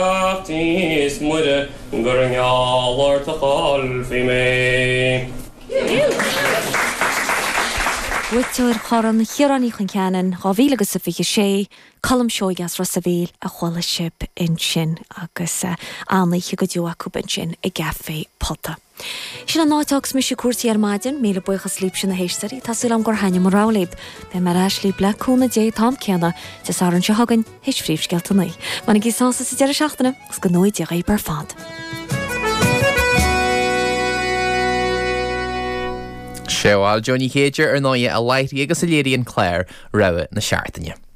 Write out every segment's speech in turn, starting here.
Bheartaíos Muire gur i ngeall ort a chaillfí mé. Buaiteoir Chorn Chiaráin Uí Chon Cheanainn 2026, Colm Seoighe as Ros a' Mhíl, a chuala sibh ansin agus an-oíche go deo acu ansin i gCafé Pota. Sin an áit a thug mise cuairtí ar maidin, míle buíochas libhse na héisteoirí, tá súil agam gur thaitnigh mo rogha libh. Beidh mé ar ais libh le cúnamh Dé an t-am céanna Dé Sathairn seo chugainn, théis phríomhscéalta a naoi. Bainigí sásamh as an deireadh seachtaine, agus go ngnóthaí Dia dhaoibh ar fad. Sea bhuel Jó Ní Chéide ar ndóigh a láithrigh agus a léirigh an clár Rogha na Seachtaine.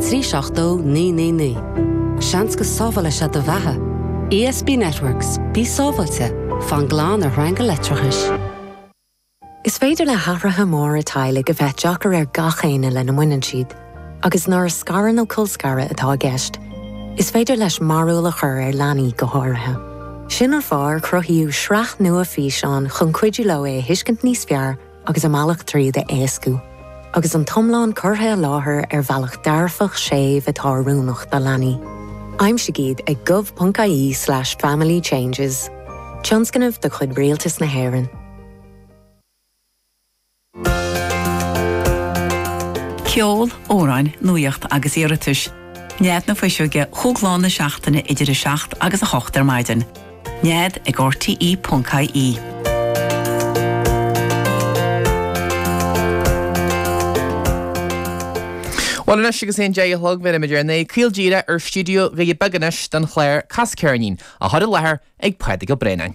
trí 70999. Seans go sábhálfaidh sé do bheatha. ESB Networks, bí sábháilte, fan glan ar shreanga leictreachais. Is féidir le hathruithe móra teaghlaigh a bheith deacair ar gach éinne lena mbaineann siad, agus nuair is scaradh nó colscaradh atá i gceist, is féidir leis mearbhall a chur ar leanaí go háirithe. Sin an fáth ar cruthaíodh sraith nua físeán chun cuidiú leo é a thuiscint níos fearr, agus a mbealach tríd a éascú, agus an t-iomlán curtha i láthair ar bhealach dearfach séimh atá oiriúnach do leanaí. Aimsigh iad ag gov.ie slash family changes. Tionscnamh de chuid Rialtas na hÉireann. Ceol, amhráin, nuaíocht agus iarratais. Nead na Fuiseoige, chúig lá na seachtaine idir 7 agus 8 ar maidin. Nead ag RTE.ie. Bhuel anois agus é an deich a chlog bheirimid ár n-aghaidh caol díreach ar stiúideo Dhoirí Beaga anois don chlár Cas Ceirnín á chur i láthair ag Pádraig Ó Braonáin.